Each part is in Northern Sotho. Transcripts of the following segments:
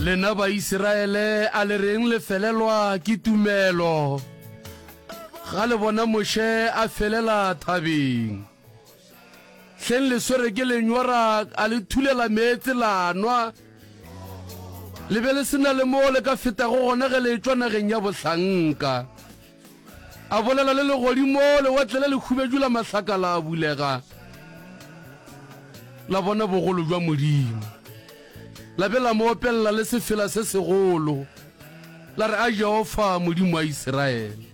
Lena Baisiraele, a le reng le felelwa ke tumelo ga le bona Moshe a felela thabeng? Hleng le swere ke lenyora a le thulela meetse la nwa, le be le se na le moo le ka fetago gona ge le etšwa nageng ya bohlanka. A bolela le legodimo, lewatle la lekhubedu la mahlaka la bulega, la bona bogolo jwa Modimo. La be la mo opelela le sefela se segolo, la re, A Jehofa, Modimo wa Isiraele,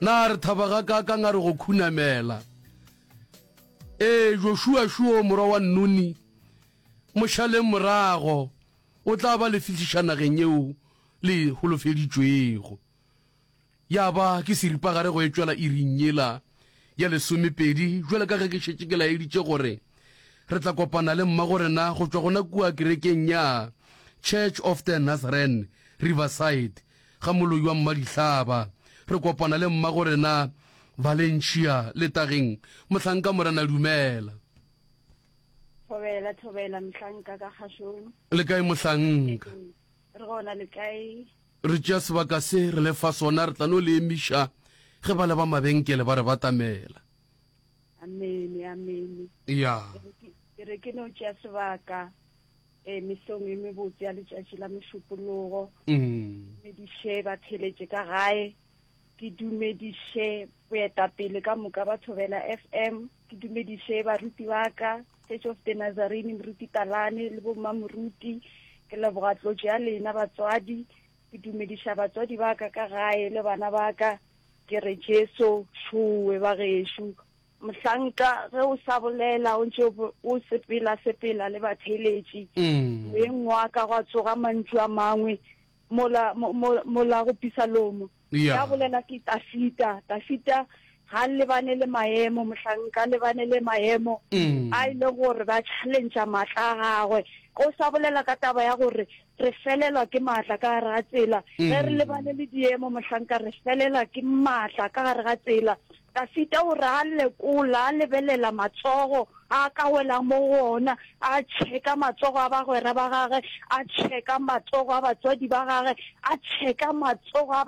na re thaba gakaakang a re go khunamela! Ee, Joshua Shuo, morwa wa Nuni, mo šaleng morago, o tla ba le fihliša nageng yeo le e holofeditšwego. Ya ba ke seripagare go etšwela iring yela ya lesomepedi, bjalo ka ge ke šetše ke laeditše gore re tla kopana le mmago rena go tšwa gona kua kerekeng ya Church of the Nazarene Riverside ga Moloi wa Mmadihlaba. Re kopana le mmago rena Valencia letageng. Mohlanka Morena dumela. Thobela, thobela, mohlanka ka kgašong. Le kae mohlanka? Re gona le kae? Re tšea sebaka se re le fa sona, re tla no le emiša ge bale ba mabenkele ba re batamela. Amene, amene. Ya. Ke re ke no tšea sebaka eh, mesong e mebotse ya letšatši la Mošupologo, mm. me diše ba theletše ka gae. Ke dumediše boetapele ka moka ba Thobela FM, ke dumediše baruti ba ka, Church of the Nazarene, Moruti Talane le bommamoruti. Ke leboga tlotšo ya lena batswadi, ke dumediša batswadi ba ka ka gae le bana ba ka, ke re Jesu šowe ba gešo. Mohlanka ge o sa bolela o ntše o sepela-sepela le batheeletši, moyeng wa ka gwa tsoga mantšu a mangwe mola, mo, mo, mola go pisalomo. Ya. Ya bolela ke Tafita. Tafita ga a lebane le maemo, mohlanka a lebane le maemo a e le gore ba challengea maatla a gagwe. O sa bolela ka taba ya gore re felelwa ke maatla ka gare ga tsela. Ge re lebane le diemo, mohlanka, re felelwa ke maatla ka gare ga tsela. Dafida o re a lekola, a lebelela matsogo a ka welang mo go ona, a tšheka matsogo a bagwera ba gagwe, a tšheka matsogo a batswadi ba gagwe, a tšheka matsogo a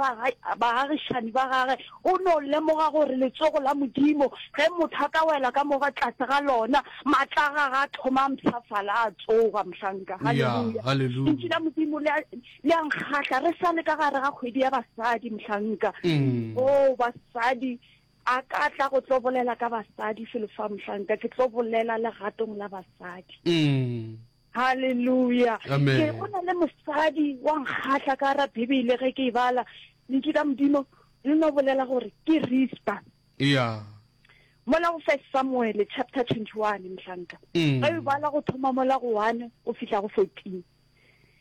baagišani ba gagwe. O no lemoga gore letsogo la Modimo, ge motho a ka wela ka mo tlase ga lona, maatla a gagwe a thoma a mpshafala, a tsoga, mohlanka. Haleluya! Lentšu la Modimo le a, le a nkgahla re sa le ka gare ga kgwedi ya basadi mohlanka mm. o oh, basadi a ka tla go tlo bolela ka basadi felo fa mohlanka ke tlo bolela legatong la basadi mm. halleluja ke go na le mosadi wa nkgatlha ka ra bibele ge ke e bala lentši ka modimo le no bolela gore ke rispa ya mola go first samuele chapter twenty one mohlanka mm. ge e bala go thoma mola go one go fitlha go fourteen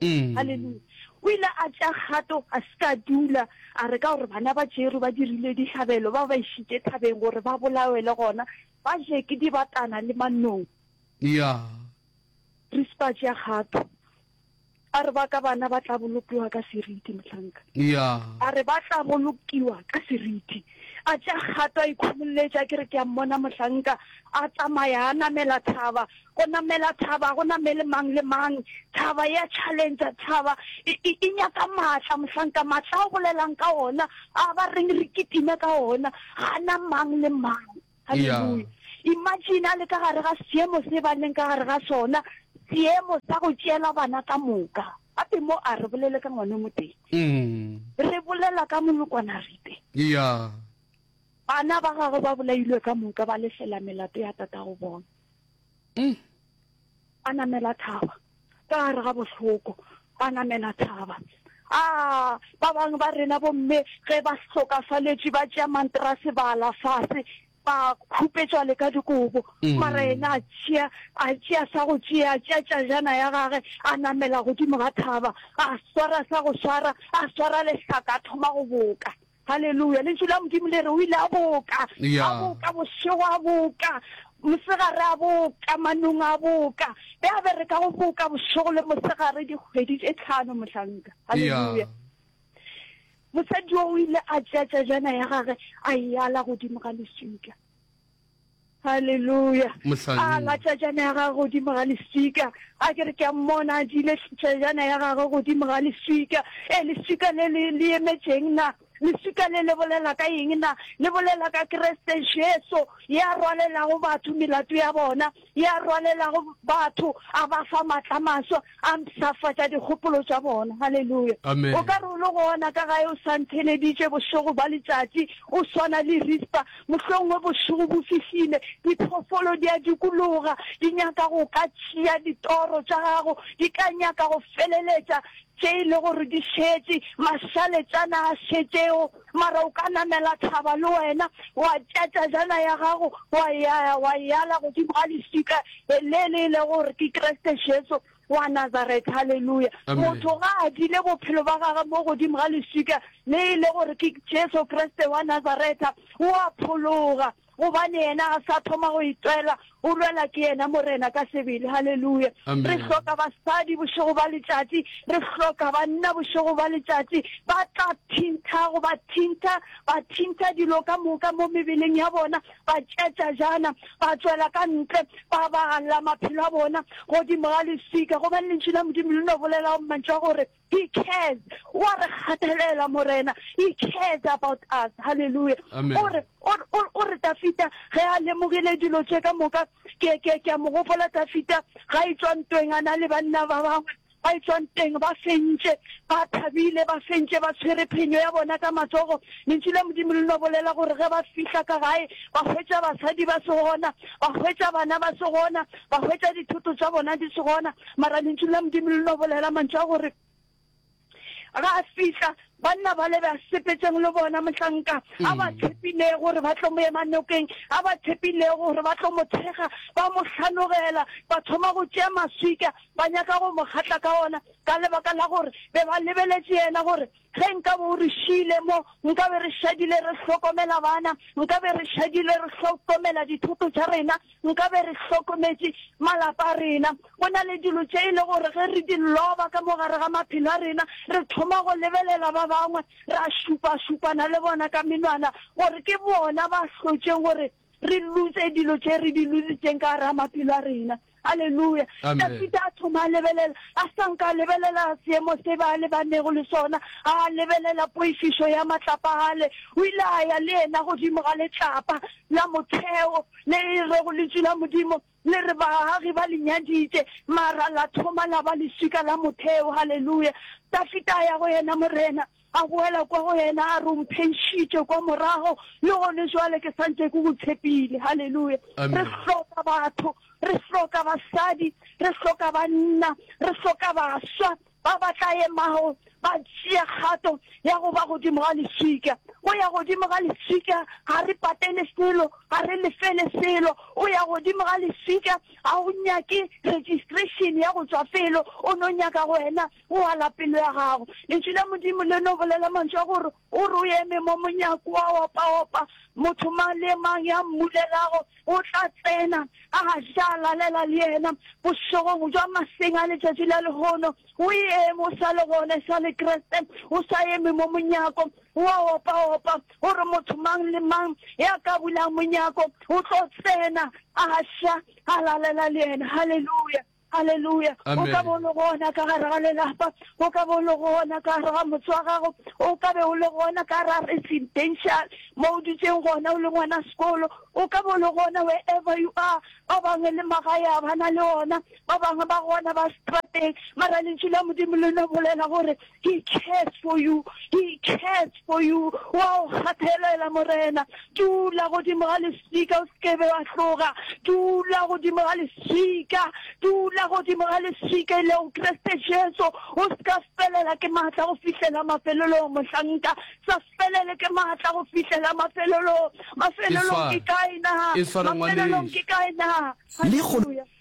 Haleluya! O ile a tšea kgato, a se ka a dula, a re ka gore bana ba Jeru ba dirile dihlabelo, ba ba išitše thabeng gore ba bolawe le gona ba je ke dibatana le manong. Ya. Re se ka tšea kgato. A re ba ka bana ba tla bolokiwa ka seriti, mohlanka. Ya. A re ba tla bolokiwa ka seriti. A tšea kgato, a ikhumolletša, ke re ke a mmona mohlanka a tsamaya a namela thaba, Go namela thaba go namele mang le mang. Thaba e a challengea, thaba e, e, e nyaka maatla. Mohlanka, maatla a o bolelang ka ona, a ba reng re kitime ka ona, ga a na mang le mang. Haleluya! Imagine a le ka gare ga seemo se ba leng ka gare ga sona, seemo sa go tšeela bana ka moka. Gape mo a re bolele ka ngwana o motee. Mm. Re bolela ka molokwana Rite. Yeah. Bana ba gagwe ba bolailwe ka moka, ba lefela melato ya tatago bona. a namela thaba ka gare ga bohloko a namela thaba a ba bangwe ba rena bomme ge ba hlokafaletše ba tšea manterase ba la fase ba khupetšwa le ka dikobo mm. mara ena a tšea a tšea sa go tšea a tšea tšajana ya gage a namela godimo ga thaba a swara sa go swara a swara lehlaka a thoma go boka Haleluya! Lentšu la Modimo le re o ile a boka, a boka bošego, a boka mosegare, a boka manong, a boka. Ge a bereka go boka bošego le mosegare dikgwedi tše tlhano, mohlanka. Haleluya! Mosadi yo o ile a tšea tsajana ya gage a e ala godimo ga leswika. Haleluya. A la tšajana ya gagwe godimo ga leswika. A ke re ke a mmona a dile tšajana ya gagwe godimo ga leswika. E leswika le le le emetšeng na? Leswika le le bolela ka eng na? Le bolela ka Kriste Jesu ya rwalelago batho melato ya bona. ya rwalelago batho, a ba fa matla maswa, a mpshafatša dikgopolo tša bona. Haleluya! Amen. O ka re o le gona ka gae, o sa ntheleditše bošego ba letšatši, o swana le Rispa. Mohlomongwe bošego bo fihlile, diphoofolo di a dikologa, di nyaka go ka tšea ditoro tša gago, di ka nyaka go feleletša Tše e le gore di šetše, mašaletšana a šetšego, mara o ka namela thaba le wena, wa tšea tšajana ya gago, wa ya, wa e ala godimo ga leswika le le e lego gore ke Kriste Jesu wa Nazareth. Haleluya! Amen. Motho ga a dile bophelo ba gagwe mo godimo ga leswika le e le gore ke Jesu Kriste wa Nazareth, o a phologa. gobane yena ga sa thoma go itwela o lwela ke yena morena ka sebele halleluja re hloka basadi bošego ba letšatši re hloka banna bošego ba letšatši ba tla thintha go ba thintha ba thintha dilo ka moka mo mebeleng ya bona ba tšetša jana ba tswela ka ntle ba bagalla maphelo a bona godimo ga leswika gobane lentši la modimo le no bolela go mmantšwa gore He cares. O a re gatelela Morena. He cares about us. Hallelujah. Amen. O re o re- o re- o re Dafita ge a lemogile dilo tše ka moka ke ke ke a mo gopola Dafita ga e tswa ntweng a na le banna ba bangwe ba e tswa nteng ba fentše ba thabile ba fentše ba tshwere phenyo ya bona ka matsogo lentšu la modimo le no bolela gore ge ba fihla ka gae ba hwetša basadi ba se gona ba hwetša bana ba se gona Ba hwetša dithoto tša bona di se gona, mara lentšu la Modimo le no bolela mantšu a gore ga a fihla banna ba le ba sepetseng le bona mohlanka a ba mm. tshepilego gore ba tlo mo ema nokeng a ba tshepilego gore ba tlo mo thekga ba mo hlanogela ba thoma go tšea maswika ba nyaka go mo kgatla ka ona ka lebaka la gore be ba lebeletše yena gore Ge nkabe o re šiile mo, nkabe re šadile re hlokomela bana, nkabe re šadile re hlokomela dithoto tša rena, nkabe re hlokometše malapa a rena. Go na le dilo tše e le gore ge re di loba ka mo gare ga maphelo a rena, re thoma go lebelela ba bangwe, ra šupašupana le bona ka menwana gore ke bona ba hlotšeng gore re lose dilo tše re di lositseng ka gara maphelo a rena halleluja dafita a thoma a lebelela a sanka a lebelela seemo se ba lebanego le sona a lebelela poifišo ya matlapa gale o ile a ya le yena godimo ga letlapa la motheo le e rego lentšu la modimo Le re, Baagagi ba le nyaditše, mara la thoma la ba leswika la motheo. Haleluya! Dafita a ya go yena Morena, a boela kwa go yena, a re, O mpheišitše kwa morago, le gone bjale ke sa ntše ke go tshepile. Haleluya! Re hloka batho, re hloka basadi, re hloka banna, re hloka baswa, ba ba tla emago ba tšea kgato ya go ba godimo ga leswika. Go ya godimo ga leswika ga re patele selo, ga re lefele selo. O ya godimo ga leswika ga o nyake registration ya go tšwa felo, o no nyaka go wena o ala pelo ya gago. Lentšu la Modimo le no bolela mantšu a gore O re o eme mo monyako wa opaopa, motho mang le mang ya mmulelago o tla tsena, a ga se a lalela le yena. Bošegong bja maseng a letšatši la lehono, o eme, o sa le gona e sa le Kriste, o sa eme mo monyako wa opaopa. O re motho mang le mang ya ka bulang monyako o tlo tsena, a ga se a lalela le yena. Haleluya! Haleluya. O ka bo o le gona ka gare ga lelapa, o ka bo o le gona ka gare ga motse wa gago, o ka be o le gona ka gare ga residential mo o dutseng gona o le ngwana sekolo, o ka bo o le gona wherever you are. Ba bangwe le magae a ba na le ona, ba bangwe ba gona ba strateng, mara lentšu la Modimo le no bolela gore He cares for you, He cares for you, o a o kgathelela Morena. Dula godimo ga leswika, o sekebe wa tloga. Dula godimo ga leswika, dula godimo ga leswika, e lego Kriste Jesu. O seka felela ke maatla go fihlela mafelelong, mohlanka. Sa felele ke maatla go fihlela mafelelong. Mafelelong ke kae na? Mafelelong ke kae na? Haleluya.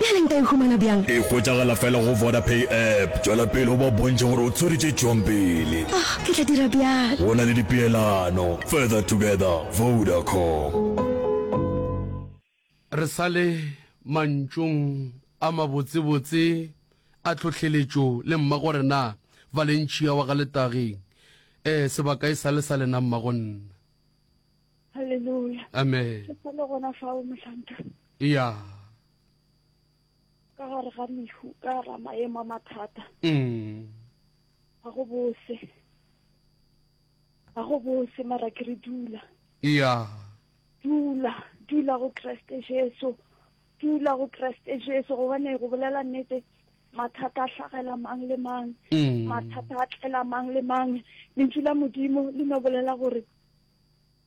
Bjale nka e humana bjang? E hwetšagala fela go Vodapay app. Tšwela pele o ba bontšhe gore o tswere tše tšwang pele. Oh, ke tla dira bjalo. Go na le dipeelano. Further together, Vodacom. Re sa le mantšong a mabotsebotse a tlhohleletšo le mmagorena Valencia wa ga Letageng, ee, sebaka e sa le sa lena mmagonna. Haleluya. Amen. Ke sa le gona fa o mohlanka. Ya. Ka gare ga mehu, ka ra maemo a mathata. Mm. Ga go bose. Ga go bose mara ke re dula. Ya. Dula, dula go Kriste Jesu. Dula go Kriste Jesu gobane go bolela nnete mathata a tlhagela mang le mang mm. mathata a tlela mang le mang lentšu la modimo le no bolela gore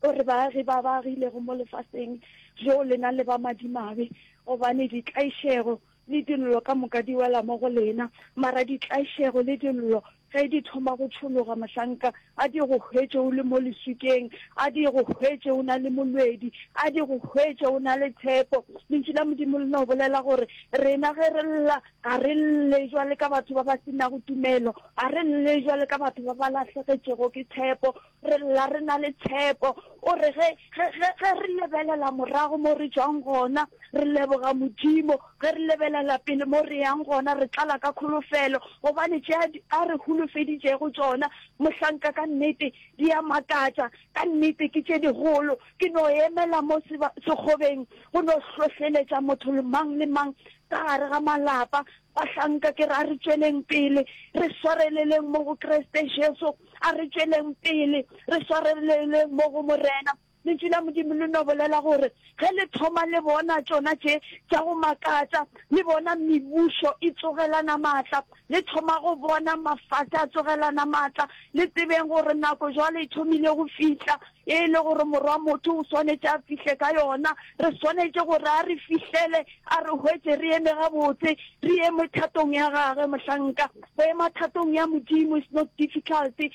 O re, Baagi ba ba agilego mo lefaseng bjo lena le ba madimabe, gobane ditlaišego le dillo ka moka di wela mo go lena, mara ditlaišego le dillo ge di thoma go tšhologa, mohlanka a di go hwetše o le mo leswikeng, a di go hwetše o na le molwedi, a di go hwetše o na le tshepo. Lentšu la Modimo le no bolela gore rena ge re lla, ga re lle bjale ka batho ba ba se nago tumelo, ga re lle bjale ka batho ba ba lahlegetšego ke tshepo, Re lla re na le tshepo. O re, Ge, ge, ge, ge re lebelela morago mo re tšwang gona, re leboga Modimo. Ge re lebelela pele mo re yang gona, re tlala ka kholofelo, gobane tše a, a re holofeditšego tšona, mohlanka, ka nnete di a makatša. Ka nnete ke tše dikgolo. Ke no emela mo seba, sekgobeng go no hlohleletša motho le mang le mang ka gare ga malapa, Bahlanka, ke re a re tšweleng pele re swareleleng mo go Kriste Jesu, a re tšweleng pele re swareleleng mo go Morena. Lentšu la Modimo le no bolela gore ge le thoma le bona tšona tše tša go makatša, le bona mebušo e tsogelana matla, le thoma go bona mafase a tsogelana matla, le tsebeng gore nako jwale e thomile go fihla. e le gore Morwa Motho o swanetše a fihle ka yona. Re swanetše gore a re fihlele, a re hwetše re eme gabotse, re eme thatong ya Gagwe. Mohlanka, go ema thatong ya Modimo is not difficult. E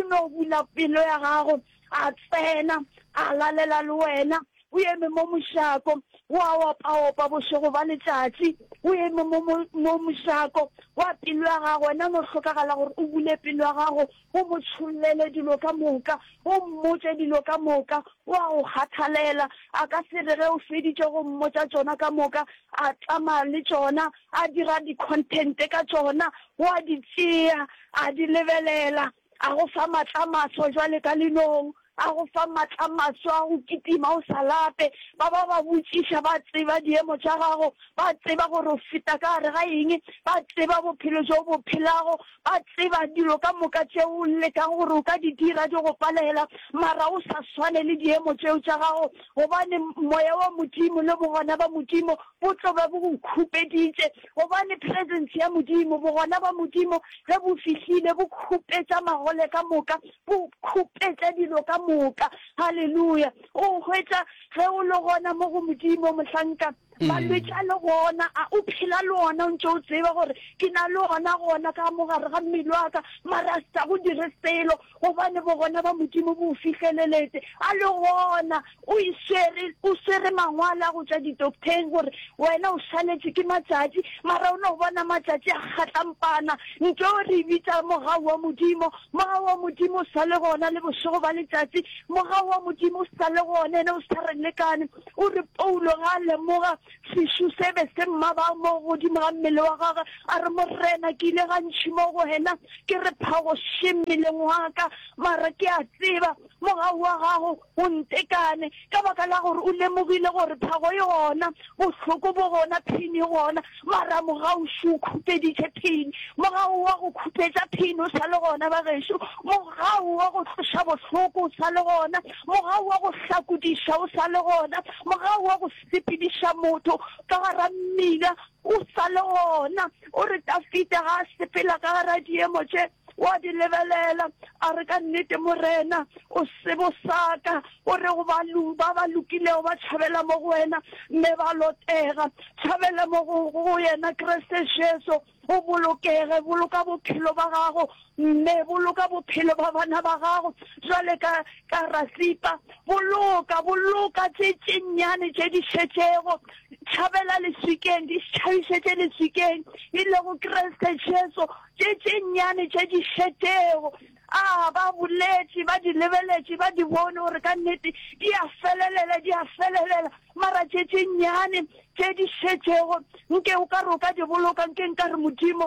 no bula pelo ya gago, a tsena, a lalela le wena. O eme mo mošako, o a opaopa bošego ba letšatši. O eme mo, mo, mo mošako wa pelo ya gago. Wena o no hlokagala gore o bule pelo ya gago, O mo tšhollele dilo ka moka, o mmotše dilo ka moka. O a go kgathalela. A ka se re ge o feditše go mmotša tšona ka moka, a tsamaya le tšona, a dira di-content ka tšona, o a di tsea, a di lebelela, a go fa matlamaso bjale ka linong. A go fa matla maswa a go kitima o sa lape. Ba ba ba botšiša ba tseba diemo tša gago, ba tseba gore o feta ka gare ga eng, ba tseba bophelo bjo o bo phelago, ba tseba dilo ka moka tše o lekang gore o ka di dira di go palehela, mara o sa swane le diemo tšeo tša gago, gobane Moya wa Modimo le Bogona ba Modimo bo tlo be bo go khupeditše, gobane Presence ya Modimo, Bogona ba Modimo ge bo fihlile bo khupetša magole ka moka, Go khupetša dilo ka moka. Haleluya! O hwetša, ge o le gona mo go Modimo, mohlanka, malwetši a le gona a, o phela le ona, o ntše o tseba gore ke na le ona gona ka mo gare ga mmele wa ka, mara a se sa go dire selo, gobane Bogona ba Modimo bo o fihleleletse. A le gona. O e swere, o swere mangwalo a go tšwa didoktheng gore wena o šaletše ke matšatši, mara o no bona matšatši a kgatlampana, nto re bitša mogau wa Modimo. Mogau wa Modimo o sa le gona le bošego ba letšatši. Mogau wa Modimo o sa le gona, ene o sa re lekane. O re Paulo ga a lemoga sešo se be se mmaba mo godimo ga mmele wa gagwe, a re, Morena, ke ile gantši mo go wena, ke re phagoše mmeleng wa ka, mara ke a tseba mogau wa gago O ntekane, ka baka la gore o lemogile gore phago e gona, bohloko bo gona, phini e gona, maramu gaoši o khupeditše phini. Mo ga o wa go khupetša phini o sa le gona, bagešo. Mo ga o wa go tloša bohloko o sa le gona. Mo ga o wa go hlakodiša o sa le gona. Mo ga o wa go sepediša motho ka gara mmila. O sa le gona. O re Tafida ga a sepela ka gare ga diemo tše, o a di lebelela, a re, Ka nnete, Morena, o sebo sa ka. O re go ba, ba ba lokilego ba tšhabela mo go wena, mme ba lotega. Tšhabela mo go, go Yena Kriste Jesu, o bolokege. Boloka bophelo ba gago Mme, boloka bophelo bja bana ba Gago, bjale ka, ka ra sipa. Boloka, boloka tše, tše nnyane tše di šetšego. Tšhabela leswikeng, di tšhabišetše leswikeng, e lego Kriste Jesu, tše, tše nnyane tše di šetšego. A, ba boletše, ba di lebeletše, ba di bone gore ka nnete di a felelela, di a felelela, mara tše, tše nnyane tše di šetšego, nke o ka re o ka di boloka, nke nka re, Modimo,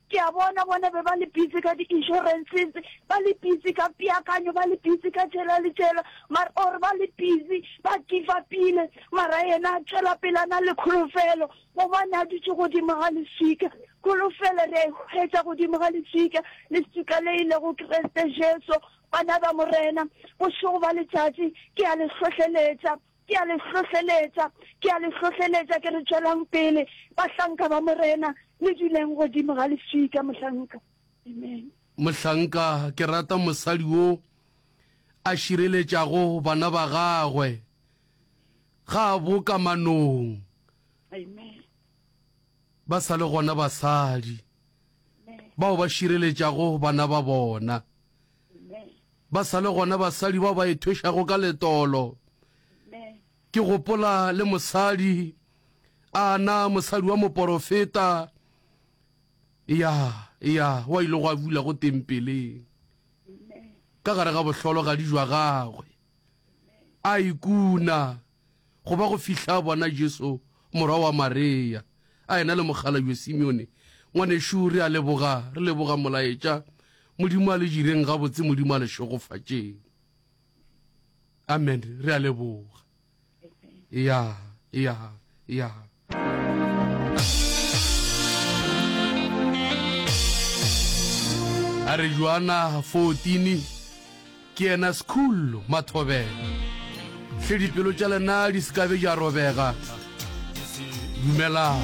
Ke a bona bona be ba le busy ka di-insurances, ba le busy ka peakanyo, ba le busy ka tšela le tšela, mar or ba le busy ba give upile, mara yena a tšwela pele a na le kholofelo, gobane a dutše godimo ga leswika. Kholofelo re a e hwetša godimo ga leswika, leswika le e lego Kriste Jesu. Bana ba Morena, bošego bja letšatši ke a le hlohleletša, Ke a le hlohleletša, ke a le hlohleletša, ke re, tšwelang pele, bahlanka ba Morena, le duleng godimo ga lefika, mohlanka. Amen. Mohlanka, ke rata mosadi wo a šireletšago bana ba gagwe, ga a bo ka manong. Amen. Ba sa le gona basadi bao ba šireletšago bana ba bona. Ba sa le gona basadi bao ba ethwešago ka letolo. Ke gopola le mosadi, a na mosadi wa moporofeta, ya, ya, wa ile go a bula go tempeleng, ka gare ga bohlolo ga dijwa gagwe, a ikuna, go ba go fihla a bona Jesu morwa wa Mareya a ena le mokgalabje Simeone, Ngwanešu, re a leboga, re leboga Molaetša. Modimo a le jireng gabotse, Modimo a le šegofatšeng. Amen. Re a leboga. Ya, ya, ya. a re joana 14 ke yena sekhullo mathobela hle dipelo tša lena di sekabe ja robega dumelang